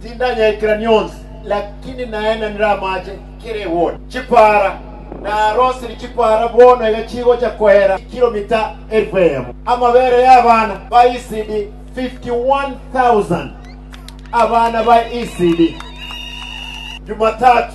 Tindanyaikirani onsi, lakini naende ndiramache kera egori chipaara. Narosiri chipaara bono iga chigocha koera chikiromita elifu eyemo, amabere y'abana ba Isidi 51,000, abana ba Isidi, Jumatatu.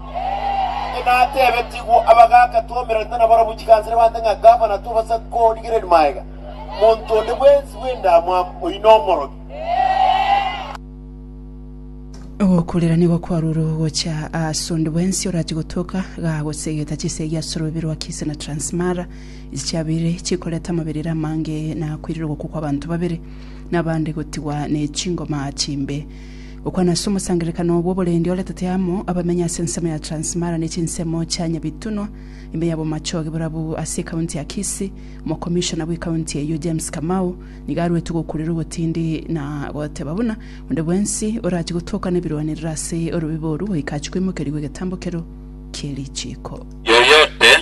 Natebetigwe abagaaka tw'omoerio nabarabwo chikansere bande ng'a gavana tobasa korigereria magega monto onde bwensi bw'endamwamu oino omorogi. Ogokurera nigo kwarure gocha ase onde bwensi orachie gotoka gagosegeta chisegi ase ororube rwa Kisii na Transmara, echi chiabeire chikoreta amaberero amange na koirera ogokwa kw'abanto babere, na abande gotigwa ne chingoma chimbe. Gokwana ase omosangererekano bw'oborendi oretete amo abamenyi ase ensemo ya Transmara ne chinsemo chia Nyabitunwa, ime ya Bomachoge borabu ase ekaunti ya Kisii, Omokomishona bw'ekaunti eyio James Kamau nigo aruetwe gokurera obotindi na goteba buna onde bwensi orachie gotoka nebirwanerero ase orobibe oru goika achie koimokerigwa egetambo kero kierichiko. Yoyote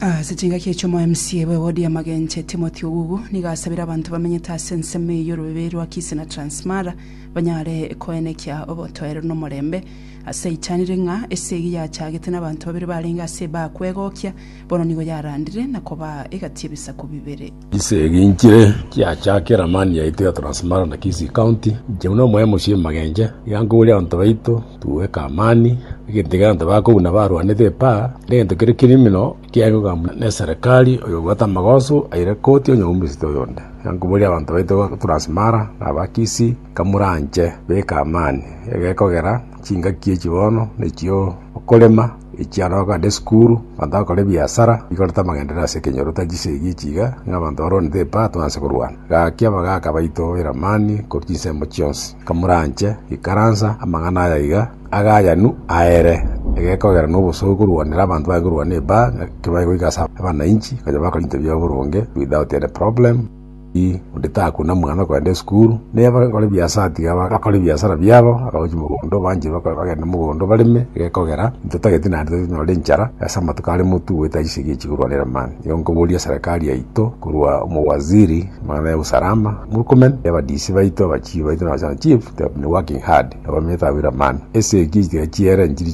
Ase chingaki echi omoMCA bw'ewodi ya Magenche, Timothy Ogugu, nigo asabire abanto bamenyete ase ensemo eye y'orobiberi rwa Kisii na Transmara banyare koenekia obotoereru na omorembe. Aseitanire ng'a esegi yachagete nabanto babere barenge ase ebaa kwegokia, bono nigo yarandire na kobaa egati ebisaku bibere. Gise eginchire kiachake eramani yaito ya Transmara na Kisii County, inche buna omoyemo ase emagenge, iga nkoboria abanto baito twoeke amani, egento ekiagera abanto ba kobuna barwanete epaa, na egento kere kirimino kiaye kogambwa ne eserekari, oyo obwate amagoso aire koti onye omominista oyonde. Iga nkoboria abanto baito ba Transmara na aba Kisii. kamoranche beka amani, egekogera chingaki echi bono nechio okorema echi aro ogande esukuru abanto bakore ebiasara bikorete amagendereo ase ekenyoro tari chisegi echi iga ng'a abanto baronete epato twanse korwana gaki abagaka baito eramani korwa chinsemo chionsi kamoranche ikaransa amang'ana aya iga agayanu aere egekogera na obosio okorwanera abanto baye korwana epaa ng'a ekebaye goika ase abanainchi bakore ebinto biabo boronge without any problem. Ii, onde takuna mwana kogenda esukuru, ne abakore biasara tiga ba- bakore biasara biabo, abagochi mogondo banche bako- bagende mogondo bareme, gekogera intwe tageti naende tari tonyore enchara ase amatuko are motugwe etari ase ekiya chigorwanera mani. Igo nkoboria eserekari yaito korwa omowaziri mana ya usalama, Murkomen, ya abadisi baito, abachief baito na abachana chief, they have been working hard, abamanyete abwire amani. Ase ekiya echitiga chiere nchiri